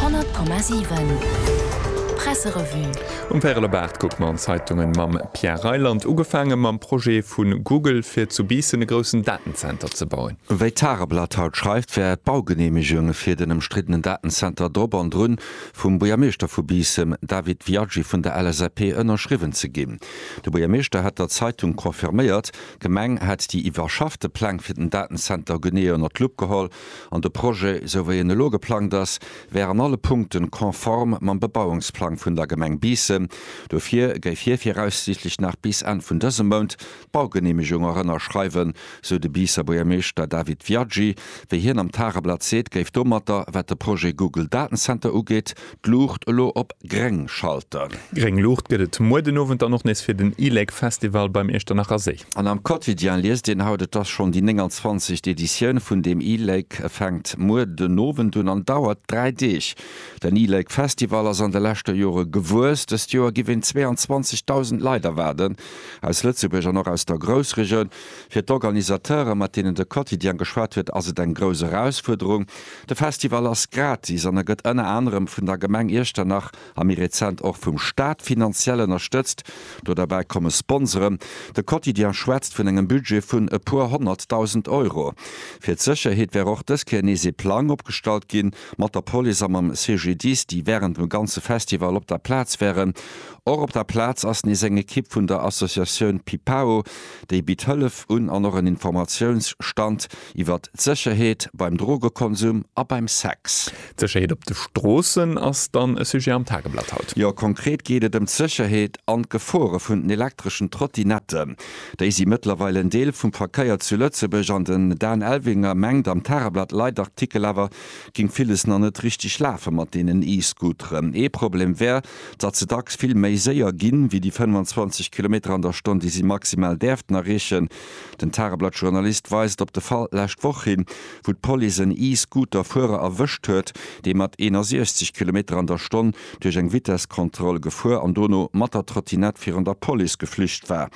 100,7 Presserevue. Um Pärelebart kuckt mer an d'Zeitungen mam Pierre Reyland. Ugefaange mam Projet vu Google fir zu Biissen e groussen Datenzenter ze bauen. Wéi d'Tageblatt haut schreift, wär d'Baugeneemegung fir den ëmstriddenen Datenzenter drop an drun vum Buergermeeschter vu Biissen, David Viaggi vun der LSAP, ënnerschriwwen ze ginn. De Buergermeeschter hätt der Zeitung confirméiert, d'Gemeng hätt déi iwwerschaffte Pläng fir den Datenzenter genee ënner d'Lupp geholl an de Projet, esou wéi en elo geplangt ass, wär an alle Punkte konform mam Bebauungsplang vun der Gemeng Biissen. Dofir géif hie viraussiichtlech nach bis Enn vun dësem Mount d'Baugeneemegung och ënnerschreiwen, sou de Biisser Buergermeeschter David Viaggi. Wéi hien am Tageblatt seet, géif domatter, wat de Projet Google Datencenter ugeet, d'Luucht elo op gréng Schalter. Gréng Luucht gëtt et muer den Owend dann och nees fir den ILEC Festival beim Iechternacher Séi. An am Quotidien liest een haut, et ass schonn déi 29. Editioun vun dem ILEC. E fänkt muer den Owend un an dauert dräi Deeg. Den ILEC Festival ass an de leschter Jore gewuess. Dëst Joer giff een 22.000 Leit erwaarden, aus Lëtzebuerg an och aus der Groussregioun. Fir d'Organisateure, mat deenen de Quotidien geschwat huet, ass et eng grouss Erausfuerderung. De Festival ass gratis an e gëtt ënner anerem vun der Gemeng Iechternach a méi rezent och vum Staat finanziell ënnerstëtzt. Do derbäi komme Sponsoren. De Quotidien schwätzt vun engem Budget vun e puer Honnertdausend Euro. Fir d'Sécherheet wär och dës Kéier nees ee Plang opgestallt ginn, mat der Police a mam CGDIS, déi wärend dem ganze Festival op der Plaz wären. Och op der Plaz ass nees eng Ekipp vun der Associatioun Pipao, déi bitt Hëllef un an och en Informatiounsstand. iwwer d'Sécherheet beim Drogekonsum a beim Sex. D'Sécherheet op de Stroossen ass dann e Sujet am Tageblatt haut. Jo, konkret geet et ëm d'Sécherheet an d'Gefore vun den elektreschen Trottinetten. Déi si mëttlerweil en Deel vum Verkéier zu Lëtzebuerg an den Dan Elvinger mengt, am Tageblatt Leitartikel awer géing villes nach net richteg lafe mat deenen E-Scooteren. Ee Problem wär, datt se dacks vill méi séier ginn, wéi déi 25 Kilometer an der Stonn, déi si maximal däerften erreechen. Den Tageblatt-Journalist weist op de Fall lescht Woch hin, wou d'Police en E-Scooter-Fuerer erwëscht huet, dee mat 61 Kilometer an der Stonn duerch eng Vitesskontroll gefuer an dono mat der Trottinett virun der Police geflücht war.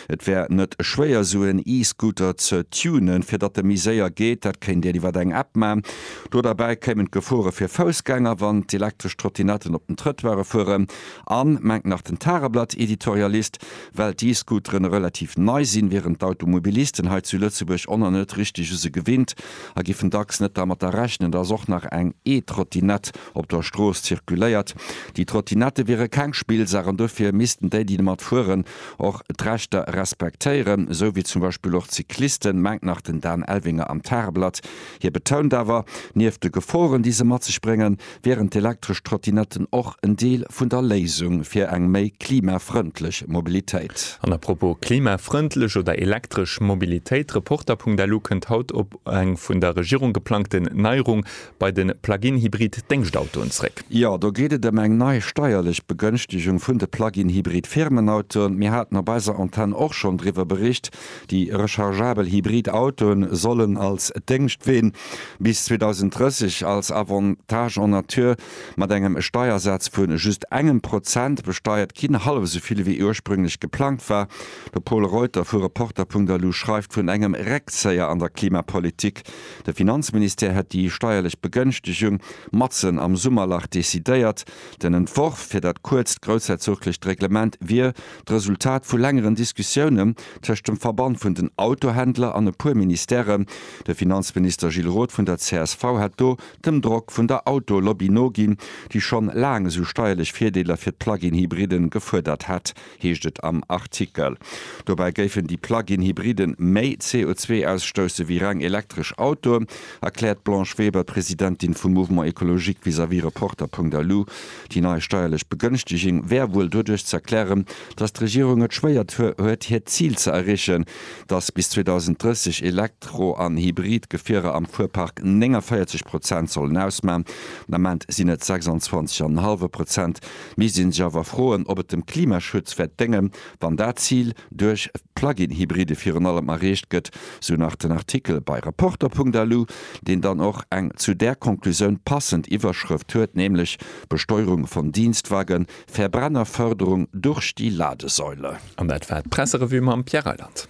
Et wär net schwéier, sou en E-Scooter ze tunen, fir datt e méi séier geet. Dat kéint een iwwer eng App maachen. Do derbäi kéimen d'Gefore fir Foussgänger, wann d'elektresch Trottinetten op den Trëttoire fueren. An, mengt nach den Tageblatt-Editorialist, Well d'E-Scooteren relativ nei sinn, wieren d'Automobilisten hei zu Lëtzebuerg oner net richteg u se gewinnt a giffen dacks net dermatter rechnen, dass och nach eng E-Trottinett op der Strooss zirkuléiert. Déi Trottinette wiere keng Spillsaach an dofir missten déi, déi domat fueren, och d'Rechter respektéieren, esou wéi zum Beispill och d'Cyclisten, mengt nach den Dan Elvinger am Tageblatt. Hie betount awer, nieft de Geforen, déi se mat sech bréngen, wieren d'elektresch Trottinetten och en Deel vun der Léisung fir eng méi klimafrëndlech Mobilitéit. An a propos klimafrëndlech oder elektresch Mobilitéit, Reporter.lu kënnt haut op eng vun der Regierung geplangten Neierung bei de Plug-in-Hybrid-Déngschtautoen zréck. Jo, do geet et ëm eng nei steierlech Begënschtegung vun de Plug-in-Hybrid-Firmenautoen. Mir haten op eiser Antenn och schonn driwwer bericht. Déi rechargeabel hybrid Autoen sollen als Déngschtween bis 2030 als Avantage en nature mat engem Steiersaz vu just engem Prozent besteiert ginn, hallef esou vill wéi ursprünglech geplangt war. De Pol Reuter vu Reporter.lu schreift vun engem Reckzéier an der Klimapolitik. De Finanzministère hätt déi steierlech Begënschtegung matzen am Summerlach decidéiert. Den Entworf fir dat kuerzt groussherzoglecht Reglement wier d'Resultat vu längeren Diskussiounen tëscht dem Verband vun den Autohändler an e puer Ministèren. De Finanzminister Gilles Roth vun der csv hätt do dem Drock vun der Autolobby noginn, déi schonn laang esou steierlech Virdeeler fir d'Plug-in-Hybriden gefuerdert hätt, heescht et am Artikel. Dobäi géifen déi Plug-in-Hybriden méi CO2 ausstousse wéi reng elektresch Autoen, erkläert d'Blanche Weber, d'Presidentin vum Mouvement Ecologique vis-à-vis Reporter.lu. Déi nei steierlech Begënschteging wär wuel doduerch ze erklären, datt d'Regierung et schwéiert huet hiert Zil ze erreechen, datt bis 2030 Elektro an Hybrid-Gefierer am Fuerpark 49 Prozent sollen ausman, den Ament sinn et 26,5 Prozent. Mir si sech awer froen, ob et dem Klimaschutz wäert déngen, Wann dat Zil duerch d'Plug-in-Hybride virun allem erreecht gëtt, sou nach den Artikel bei Reporter.lu, deen dann och eng zu där Konklusioun passend Iwwerschrëft huet, nämlech Besteuerung von Dienstwagen, Verbrennerförderung durch die Ladesäule. An dat war d'Presserevue mam Pierre Reyland.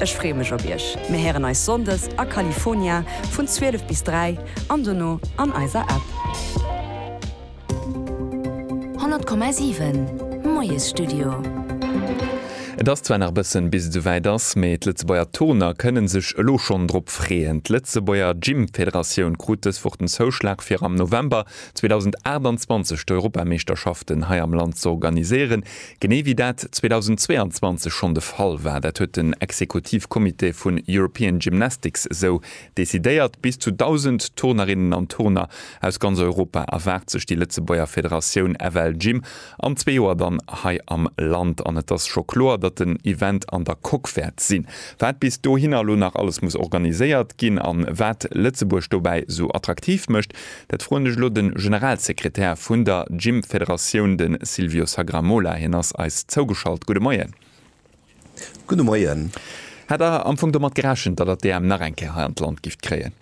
Ech free mech op iech. Mir héieren eis Sonndes a California vun 12 bis 3 an dono an eiser App. 100,7 Moiesstudio. Et ass zwar nach e bëssen bis et esouwäit ass, mee d'Lëtzebuerger Turner kënne sech elo schonn drop freeën. D'Lëtzebuerger Gym-Federatioun krut dës Woch den Zouschlag fir am November 2028 d'Europameeschterschaften hei am Land z'organiséieren. Genee wéi dat 2022 schonn de Fall war, dat huet den Exekutivcomité vun European Gymnastics esou decidéiert, bis zu 1.000 Turnerinnen an Turner aus ganz Europa erwaart sech déi Lëtzebuerger Federatioun FLGym an zwee Joer dann hei am Land. An et ass scho kloer, datt den Event an der Coque wäert sinn. Wat bis dohinner elo nach alles muss organiséiert ginn an wat Lëtzebuerg dobäi esou attraktiv mécht, Dat froen ech elo de Generalsekretär vun der Gym-Federatioun, de Silvio Sagramola. Hien ass eis zougeschalt. Gudde Moien. Gudde Moien. Hat Der am Fong domat gerechent, datt Der d'EM nach eng Kéier hei an d'Land gifft kréien?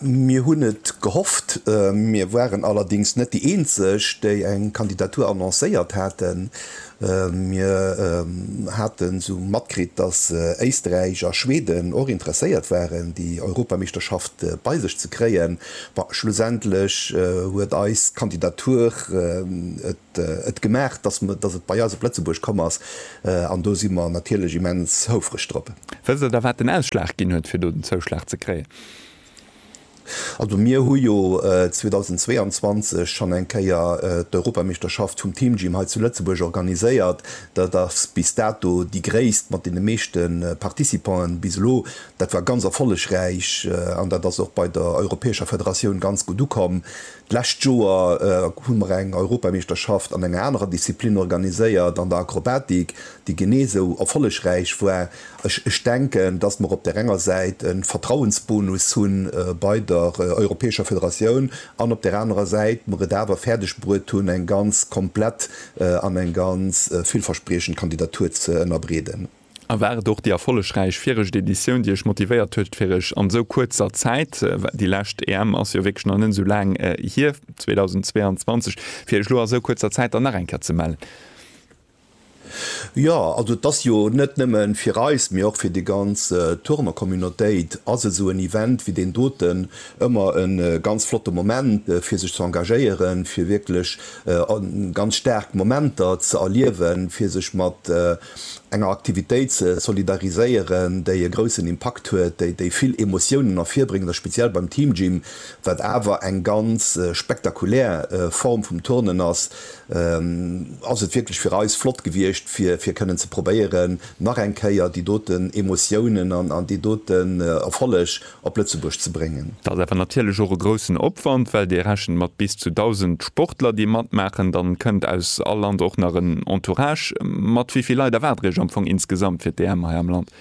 Mir hunn et gehofft. Mir waren allerdéngs net déi Eenzeg, déi eng Kandidatur annoncéiert haten. Mir hate sou matkritt, datt Éisträich a Schweden och interesséiert waren, déi Europameeschterschaft bei sech ze kréien. Schlussendlech huet eis Kandidatur et gemaach, datt et bei eis op Lëtzebuerg komm ass, an do si mer natierlech immens houfreg drop. Wësst Der da, wat den Ausschlag ginn huet, fir do den Zouschlag ze kréien? Also mir hu jo 2022 schonn eng Kéier d'Europameeschterschaft vum Teamgym hei zu Lëtzebuerg organiséiert. Dat ass bis dato déi gréisst mat deene meeschte Participanten bis elo. Dat war ganz erfollegräich an dat ass och bei der europäescher Federatioun ganz gutt ukomm. D'lescht Joer hu mer eng Europameeschterschaft an enger anerer Disziplin organiséiert, an der Akrobatik, déi genee esou erfollegräich war. Ech denken, dass mer op där enger Säit e Vertrauensbonus hu bei der Europäescher Federatioun an op där anerer Säit mer et awer fäerdegbruet hunn, eng ganz komplett an eng ganz villverspriechend Kandidatur ze ënnerbreeden. Erwaart och déi erfollegräich viregt Editioun, déi iech motivéiert huet, fir iech an esou kuerzer Zäit, well déi lescht EM ass jo wierklech nach net esou laang hier, 2022, fir iech elo a esou kuerzer Zäit dann nach eng Kéier ze mellen. Jo, also et ass jo net nëmme fir eis, mee och fir déi ganz Turnercommunautéit ass esou en Event wéi deen doten ëmmer e ganz flotte Moment, fir sech ze engagéieren, fir wierklech ganz staark Momenter ze erliewen, fir sech mat Enger Aktivitéit ze solidariséieren, déi e groussen Impakt huet, déi déi vill Emotiounen ervirbréngt, a speziell beim Team Gym, wat awer eng ganz spektakulär Form vum Turnen ass, ass et wierklech fir eis flott gewiescht, fir fir kënnen ze probéieren, nach eng Kéier déi doten Emotiounen an déi doten Erfolleg op Lëtzebuerg ze bréngen. Dat ass awer natierlech och e groussen Opwand, well Dir rechent mat bis zu 1.000 Sportler, déi matmaachen. Dann kënnt aus all Land och nach en Entourage mat. Wéi vill Leit erwaart Der Iech am Fong insgesamt fir d'EM hei am Land?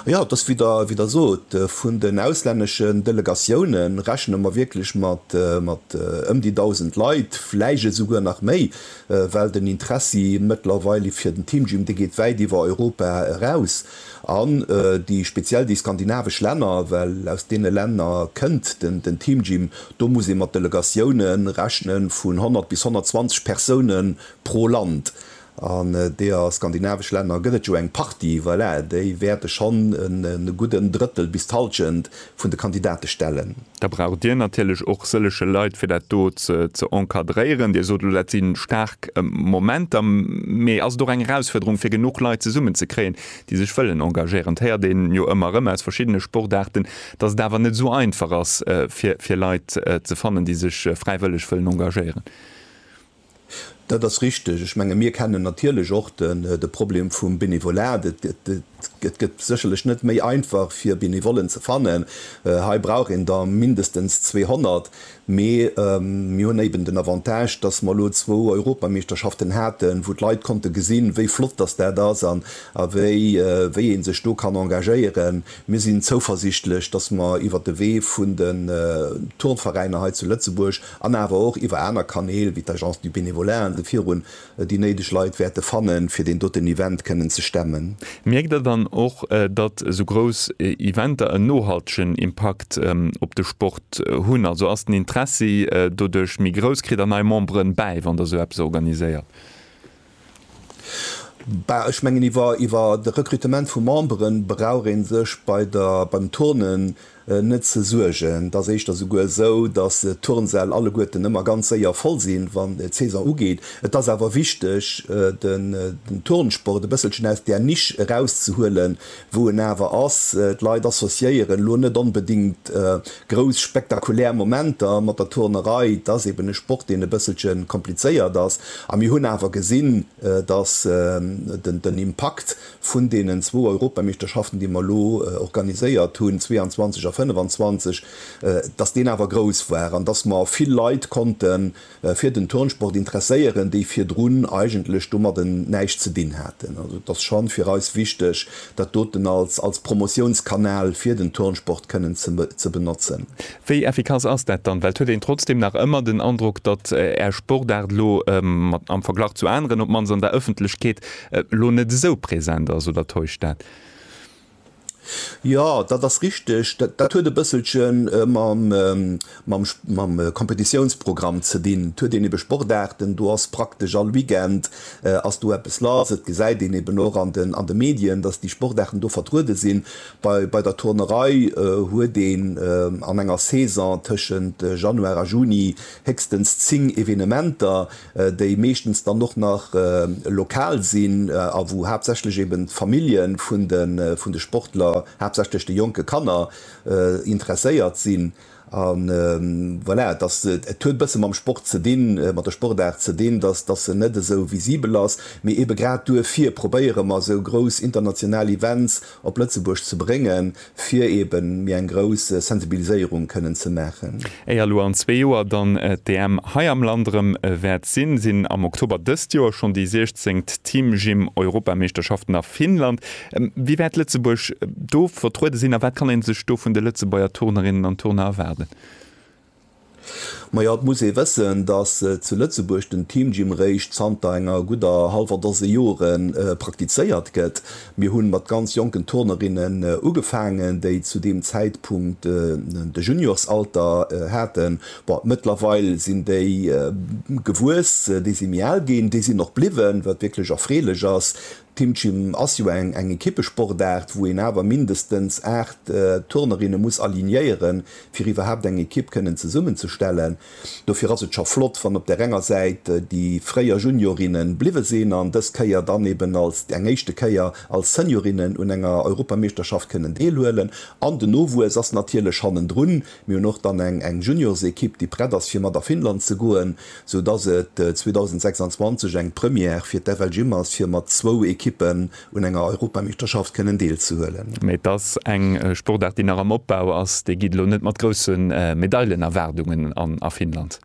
Jo, et ass wéi Der sot, vun den auslänneschen Delegatioune rechne mer wierklech mat ëm déi 1.000 Leit, vläicht esouguer nach méi, well den Interessi mëttlerweil fir den Teamgym, dee geet wäit iwwer Europa eraus. An déi speziell déi skandinavesch Länner, well aus deene Länner kënnt den Teamgym, do muss ee mat Delegatioune rechne vun 100 bis 120 Persoune pro Land. An deeër skandinavesch Länner gëtt et jo eng Partie, voilà, déi wäerte schonn e gudden Drëttel bis d'Hallschent vun de Kandidate stellen. Da braucht Dir natierlech och sëllege Leit, fir dat do ze encadréieren. Dir sot elo, dat si staark Momenter. Mee ass et och eng Erausfuerderung, fir genuch Leit zesummenzekréien, déi sech wëllen engagéieren? Et héiert een jo ëmmer erëm aus verschiddene Sportaarten, dass et awer net esou einfach ass, fir Leit ze fannen, déi sech fräiwëlleg wëllen engagéieren. Dat ass richteg. Ech menge mir kennen natierlech och de Problem vum Bénévolat. Et gëtt sécherlech net méi einfach fir Benevollen ze fannen. Hei brauch een der mindestens 200. Mee mir hunn éiben den Avantage, datt mer elo zwou Europameeschterschaften haten, wou d'Leit konnte gesinn, wéi flott datt dat ass an wéi ee sech do kann engagéieren. Mir sinn zouversichtlech, datt mer iwwer de Wee vun den Turnveräiner hei zu Lëtzebuerg, an awer och iwwer aner Kanäl wéi d'Agence du Bénévolat an sou virun, déi néideg Leit wäerte fannen, fir deen doten Event kënnen ze stemmen. Mierkt Der dann och, datt esou grouss Eventer en nohaltegen Impakt op de Sport hunn? Also ass den Interessi doduerch méi grouss? Kritt Der nei Memberen bäi, wann Der esou eppes organiséiert? Ech mengen, iwwer de Rekrutement vu Membere brauch ee sech beim Turnen net ze suergen. Et ass éischter esouguer esou, datt d'Turnsäll alleguerten ëmmer ganz séier voll sinn, wann d'Saison ugeet. Et ass awer wichteg, den Turnsport e bësselchen aus där Nisch erauszehuelen, wou en awer ass, d'Leit associéieren elo net onbedéngt grouss spektakulär Momenter mat der Turnerei, et ass eben e Sport, deen e bësselche komplizéiert ass. A mir hunn awer gesinn, datt den Impakt vun deenen zwou Europameeschterschaften, déi mer elo organiséiert hunn, 22 a 25, datt deen awer grouss war an datt mer vill Leit konnten, fir den Turnsport interesséieren, déi virdrun eigentlech domadden näischt ze dinn haten. Also et ass schon fir eis wichteg, dat doten als als Promotionskanal fir den Turnsport kënnen ze ze benotzen. Wéi effikass ass dat dann? Well et huet een trotzdem nach ëmmer den Androck, datt Är Sportaart elo mat am Verglach zu aneren, op d'mannst an der Ëffentlechkeet, elo net esou präsent ass, oder täuscht dat? Jo, dat ass richteg. Dat huet e bësselche mam Kompetitiounsprogramm ze dinn. Et huet een ebe Sportaarten, do ass praktesch all Weekend ass do eppes lass. Et gesäit een eben och an de Medien, datt déi Sportaarten do vertruede sinn. Bei der Turnerei huet een an enger Saison tëschent Januar a Juni héchstens 10 Evenementer, déi meeschtens dann och nach lokal sinn a wou haaptsächlech eben d'Famillje vun de Sportler, haaptsächlech de jonke Kanner, interesséiert sinn. A voilà, et ass, et huet e bësse mam Sport ze dinn, mat der Sportaart ze dinn, dass dass se net esou visibel ass, mee ebe grad duerfir probéiere mer esou grouss international Events, op Lëtzebuerg ze bréngen, fir eben méi eng grouss Sensibiliséierung kënnen ze maachen. Éier elo an zwee Joer dann d'EM hei am Land erëm wäert sinn, sinn am Oktober dëst Joer schonn déi siechzéngt Teamgym-Europameeschterschaften a Finnland. Wéi wäert Lëtzebuerg do vertruede sinn a wat kann ee sech do vun de Lëtzebuerger Turnerinnen an Turner erwaarden? Majo, et muss ee wëssen, datt zu Lëtzebuerg den Team Gym réischt zanter enger gudder hallwer Dose Jore praktizéiert gëtt. Mir hu mat ganz jonken Turnerinnen ugefaangen, déi zu deem Zäitpunkt de Juniorsalter haten. Bon, mëttlerweil sinn déi gewuess, déi si méi al ginn, déi sinn och bliwwen, wat wierklech erfreelech ass. D'Teamgym ass jo eng Ekippesportaart, wou een awer mindestens 8 Turnerinne muss alignéieren, fir iwwerhaapt eng Ekipp kënnen zesummenzestellen. Dofir ass et scho flott, wann op där enger Säit déi fréier Juniorinne bliwwe sinn an dës Kéier dann eben als eng éischte Kéier als Seniorinnen un enger Europameeschterschaft kënnen deelhuelen. An den Nowuess ass natierlech hannendrun, Mir hunn och dann eng eng Juniorsequipe, déi prett ass fir mat a Finnland ze goen, sou dass et 2026 eng Première fir d'FLGym ass, fir mat zwou Equippen un enger Europameeschterschaft kënnen deelzehuelen. Mee et ass eng Sportaart, déi nach am Opbau ass. Déi geet elo net mat grousse Medailenerwaardungen an a Finnland.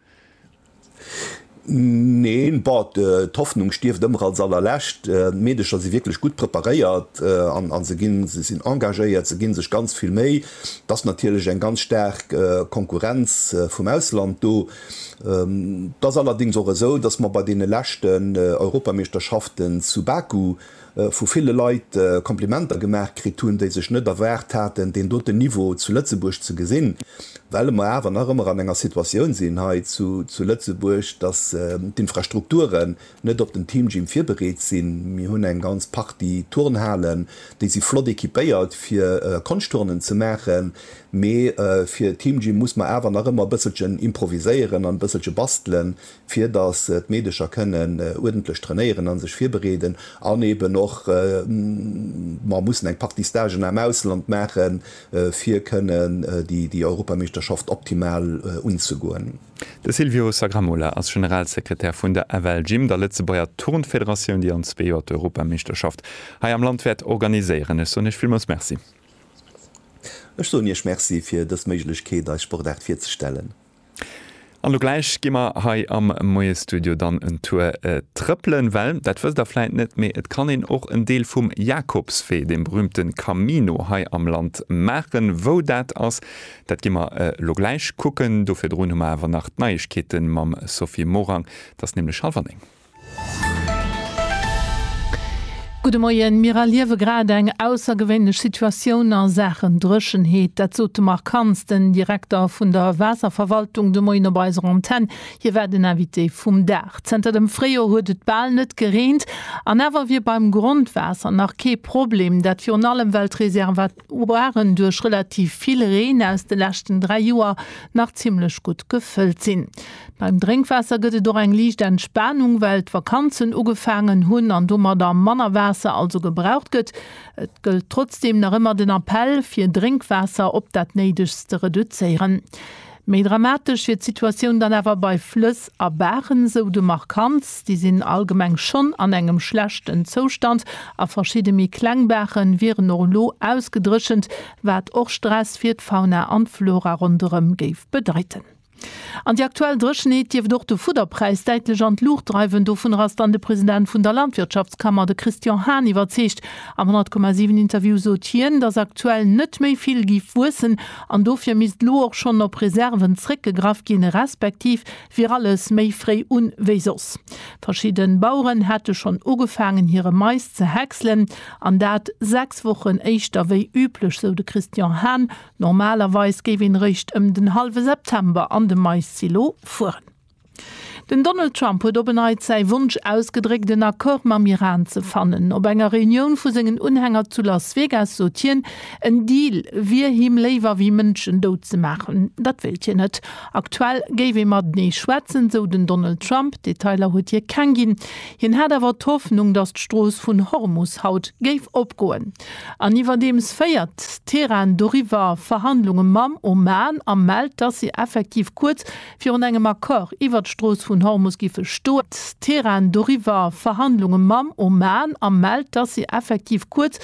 Neen, bon, d'Hoffnung stierft ëmmer als allerlescht. D'Meedecher si wierklech gutt preparéiert a se ginn, se sinn engagéiert, se gi sech ganz vill Méi. Et ass natierlech eng ganz staark Konkurrenz vum Ausland do. Et ass allerdéngs och esou, datt mer bei deene leschten Europameeschterschaften zu Baku vu ville Leit Komplimenter gemaach kritt hunn, déi sech net erwaart haten, deen doten Niveau zu Lëtzebuerg ze gesinn, well mer awer nach ëmmer an enger Situatioun sinn hei zu Lëtzebuerg, dass d'Infrastrukturen net op den Teamgym virbereet sinn. Mir hunn eng ganz Partie Turnhalen, déi si flott equipéiert, fir Konschtturnen ze maachen, mee fir Teamgym muss mer awer nach ëmmer e bësselchen improviséieren an e bësselche bastelen, fir dass d'Meedecher kënnen uerdentlech trainéieren a sech virbereeden an eben och mer mussen eng Partie Stagen am Ausland maachen, fir kënnen déi Europameeschterschaft optimal unzegoen. De Silvio Sagramola ass Generalsekretär vun der FLGym, der Lëtzebuerger Turnfederatioun, déi an zwee Joer d'Europameeschterschaft hei am Land wäert organiséieren. Ech soen Iech villmools Merci. Ech soen Iech Merci fir dës Méiglechkeet, eis Sportaart virzestellen. An lo gläich gi mer hei am Moiestudio dann en Tour trëppelen, well, dat wësst Der vläit net, mee et kann een och en Deel vum Jakobswee, deem berühmte Camino hei am Land maachen. Wou dat ass, dat gi mer lo gläich kucken. Do virdrun hu mer awer nach d'Neiegkeete mam Sophie Morang. Et ass nämlech hallwer néng. Gudde Moien, Mir erliewe grad eng aussergewéinlech Situatioun a Saachen Dréchenheet. Dat sot de Marc Kantz, den Direkter vun der Waasserverwaltung, de Moien op eiser Antenn. Hie war den Invité vum Dag. Zënter dem Fréijoer huet et bal net gereent an awer wier beim Grondwaasser nach kee Problem. Dat virun allem, well d'Reserva. waren duerch relativ vill Reen aus de leschten 3 Joer nach zimmlech gutt gefëllt sinn. Beim Drénkwaasser gëtt et och eng liicht Entspanung, well d'Vakanzen ugefaangen hunn an domadder manner Waasser also gebraucht gëtt. Et gëllt trotzdeem nach ëmmer den Appell, fir Drénkwaasser op dat Néidegst ze reduzéieren. Méi dramatesch wier d'Situatioun dann awer bei Flëss a Baachen, esou de Marc Hans. Déi sinn allgemeng schonn an engem schlechten Zoustand a verschidde méi kleng Baache wieren och elo ausgedréchent, wat och Stress fir d'Fauna an d'Flora ronderëm géif bedeiten. An déi aktuell Dréchenheet dierft och de Fudderpräis däitlech an d'Luucht dreiwen. Dovunner ass dann de President vun der Landwirtschaftskammer, de Christian Hahn, iwwerzeegt. Am 100,7 Interview sot hien, datt aktuell net méi vill géif wuessen An dofir misst elo och schonn op Reserven zréckgegraff ginn, respektiv wier alles méi fréi un wéi soss. Verschidde Baueren hätte schonn ugefaangen hire Mais ze häckselen, an dat sechs Wochen éischter wéi üblech, sou de Christian Hahn. Normalerweis géif een réischt ëm den hallwe September an de Maissilo fueren. Den Donald Trump huet op en Neits säi Wonsch ausgedréckt, en Accord mam Iran ze fannen. Op enger Reunioun vu sengen Unhänger zu Las Vegas sot hien, en Deal wier him léiwer wéi Mënschen dout ze maachen. Dat wéilt hien net. Aktuell géif ee matenee schwätzen, esou den Donald Trump. Detailer huet hie keng ginn. Hien hat awer d'Hoffnung, datt d'Strooss vun Hormus haut géif opgoen. An iwwerdeems féiert Teheran doriwwer Verhandlunge mam Oman a mellt, datt si effektiv kuerz virun engem Accord iwwert d'Strooss vun Hormus giffe stoen. D'Tehran doriwwer Verhandlunge mam Oman a mellt, dass si effektiv kuerz